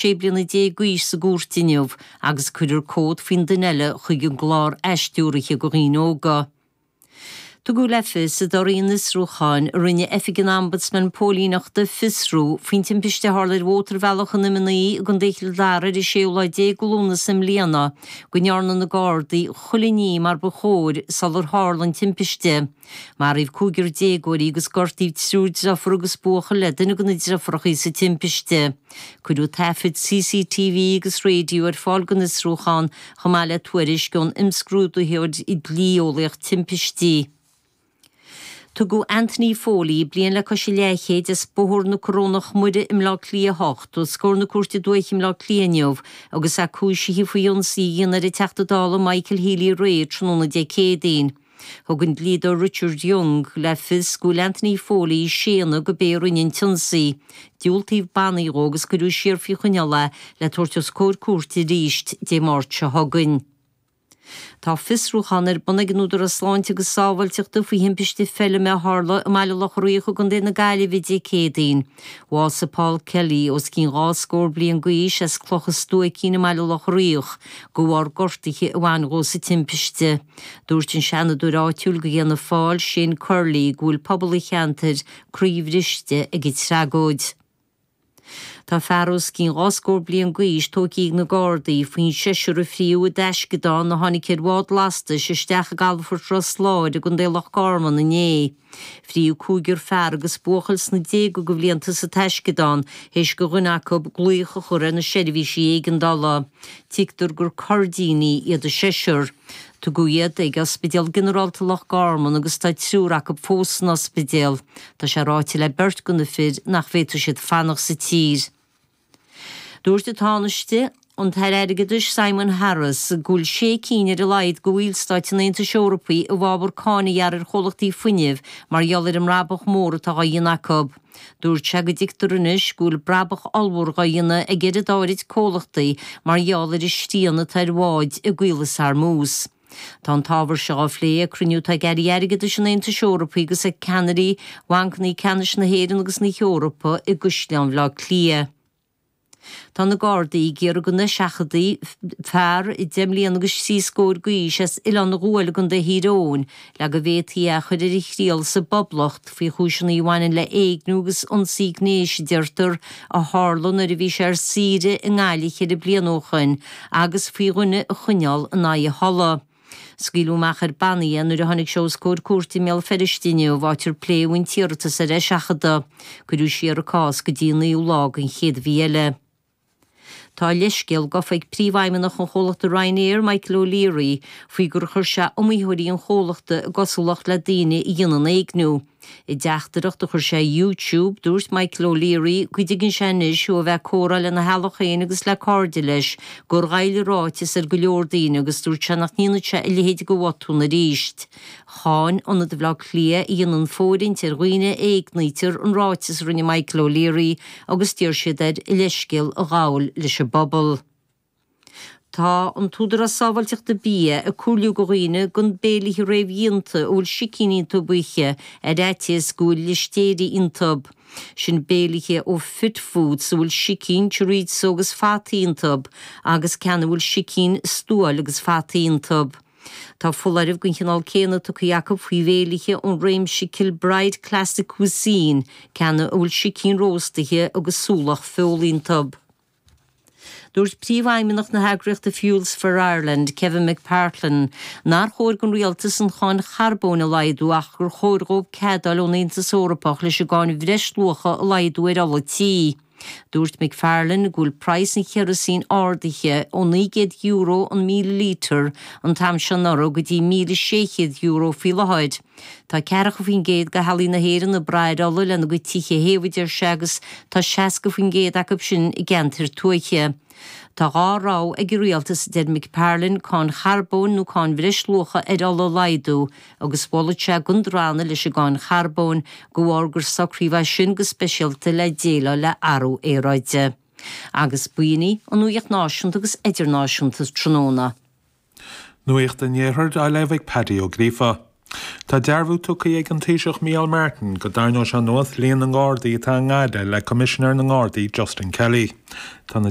sé bliana déag d'aois sa gcúirt inniu agus cuireadh comhad faoi dhuine eile chuig an gclár athstiúraithe do dhaoine óga. Tugadh le fios i dtoradh an fhiosrúcháin a rinne Oifig an Ombudsman Póilíneachta a fiosrú faoin timpiste a tharla ar mhótarbhealach an M9 i gContae Chill Dara ar an séú lá déag de Lúnasa i mbliana go ndearna na Gardaí chuile ní mar ba chóir sular tharla an timpiste. Maraíodh cúigear déagóirí agus gortaíodh triúr deirfiúr agus buachaill le duine de na deifiúracha sa timpiste. Cuireadh taifid CCTV agus raidió ar fáil don fhiosrúchán, chomh maith le tuairisc ón imscrúdaitheoir dlí-eolaíoch timpistí. Tugadh Anthony Foley, bliain le cois a leathchéid, as Bóthar na Corónach Muire i mBleá Cliath 8, os comhair na Cúirte Dúiche i mBleá Cliath inniu agus é cúisithe faoi ionsaí a dhéanamh ar an Teachta Dála Michael Healy-Rae tráthnóna Dé Céadaoin. Thug an dlíodóir Richard Young le fios go bhfuil Anthony Foley ag séanadh gurb é a rinne an t-ionsaí. Diúltaíodh bannaí dhó agus cuireadh siar faoi choinneáil é le tabhairt os comhair cúirte arís Dé Máirt seo chugainn. Tá fiosrúchán ar bun ag an Údarás Sláinte agus Sábháilteachta faoi thimpiste feilme a tharla i mBaile Locha Riach i gContae na Gaillimhe Dé Céadaoin. Bhásaigh Paul Kelly, os cionn dhá scór bliain d'aois, as Cloch a' Stuaicín i mBaile Locha Riach, de bharr gortuithe a bhain dhó sa timpiste. Dúirt an Seanadóir áitiúil de Fhianna Fáil, Shane Curley, go bhfuil pobal an cheantair croíbhriste ag an tragóid. Tá fear os cionn dhá scór bliain d'aois tógtha ag na Gardaí faoin seisear a fríodh i dtaisceadán a tháinig ar bhád lastais isteach i gCalafort Ros Láir i gContae Loch Garman inné. Fríodh cúigear fear agus buachaill sna déaga go bhlianta sa taisceadán théis do dhuine acu glaoch a chur ar na seirbhísí éigeandála. Tuigtear gur Coirdínigh iad an seisear. Tugadh iad ag Ospidéal Ginearálta Loch Garman agus tá triúr acu fós san ospidéal. Tá sé ráite le beirt de na fir nach bhféadfadh siad fanacht sa tír. Dúirt an Tánaiste, an tAire Airgeadais Simon Harris, go bhfuil sé cinn ar a laghad de bhallstáit an Aontais Eorpaigh i bhfabhar cáin a ghearradh ar chomhlachtaí fuinnimh mar gheall ar an mbrabach mór atá á dhéanamh acu. Dúirt sé go dtuigtear anois go bhfuil brabach ollmhór á dhéanamh ag oiread áirid comhlachtaí mar gheall ar an srian atá ar bháid i gCaolas Hormuz. Tá an t-ábhar seo á phlé ag cruinniú atá ag Airí Airgeadais an Aontais Eorpaigh agus ag ceannairí bhancannaí ceannais na hÉireann agus na hEorpa i gCaisleán Bhaile Átha Cliath. Tá na Gardaí ag iarraidh go n-eiseachadfaí fear deich mbliana agus trí scóir d'aois as Oileán an Ghuail i gContae Thír Eoghain le go bhféadfaí é a chur ar a thriail sa bPoblacht, faoi chúiseanna a bhaineann le éigniú agus ionsaí gnéis, a deirtear, a tharla nuair a bhí sé ar saoire i nGaillimh ceithre bliana ó shoin, agus faoi dhuine a choinneáil in aghaidh a thola. Scaoileadh amach ar bannaí é nuair a tháinig sé os comhair cúirte i mBéal Feirste inniu, áit ar pléadh an t-iarratas ar eiseachadadh. Cuireadh siar an cás go dtí an naoú lá den chéad mhí eile. Tá leithscéal gafa ag Príomhfheidhmeannach an chomhlachta Ryanair, Michael O'Leary, faoi gur chuir sé iomaítheoirí an chomhlachta i gcosúlacht le daoine a dhéanann éigniú. I dteachtaireacht a chuir sé ar YouTube, dúirt Michael O'Leary go dtuigeann sé anois, ó a bheith ag comhrá lena theaghlach féin agus le cairde leis, gur ghoill a ráiteas ar go leor daoine agus dúirt sé nach ndéanfaidh sé a leithéid de bhotún arís. Cháin Ionad i mBleá Cliath, a dhéanann fóirithint ar dhaoine a éignítear, an ráiteas a rinne Michael O'Leary agus d'iarr siad air a leithscéal a ghabhail leis an bpobal. Tá an tÚdarás Sábháilteachta Bia ag comhairliú go dhaoine gan béilithe réamhdhéanta a bhfuil sicín iontub a ithe ar fhaitíos go bhfuil listéire iontub. Sin béilithe ó Fit Foods a bhfuil sicín, chorizo agus fataí iontub agus ceann a bhfuil sicín, stuáil agus fataí iontub. Tá foláireamh den chineál céanna tugtha acu faoi bhéilithe ón réimse Kilbride Classic Cuisine, ceann ina bhfuil sicín róstaithe agus súlach feola iontub. Dúirt Príomhfheidhmeannach na heagraíochta Fuels for Ireland, Kevin McPartlan, nár chóir don rialtas an cháin charbóin a laghdú ach gur chóir dhóibh cead a fháil ón Aontas Eorpach leis an gcáin bhreisluacha a laghdú ar ola tí. Dúirt McPartlan go bhfuil praghas an cheraosín ardaithe ó €900 an míle lítear an t-am seo anuraidh go dtí €1,600 faoi láthair. Tá ceathracha faoin gcéad de theaghlaigh na hÉireann ag brath ar ola lena gcuid tithe a théamh a deir sé agus tá 60% acu sin i gceantair tuaithe. Tá dhá rogha ag an rialtas, a deir McPartlan, cáin charbóin nó cáin bhreisluacha ar ola a laghdú, agus mholfadh sé gan drannadh leis an gcáin charbóin de bharr gur socraíodh é sin go speisialta le déileáil le athrú aeráide. Agus b'in í an nuaíocht náisiúnta agus idirnáisiúnta tráthnóna. Nuaíocht an Iarthair á léamh ag Paddy Ó Gríofa. Tá dearbhú tugtha ag an Taoiseach Micheál Martin go dtarraingeoidh sé anuas líon na nGardaí atá i nGaillimh le Coimisinéir na nGardaí Justin Kelly. Tá na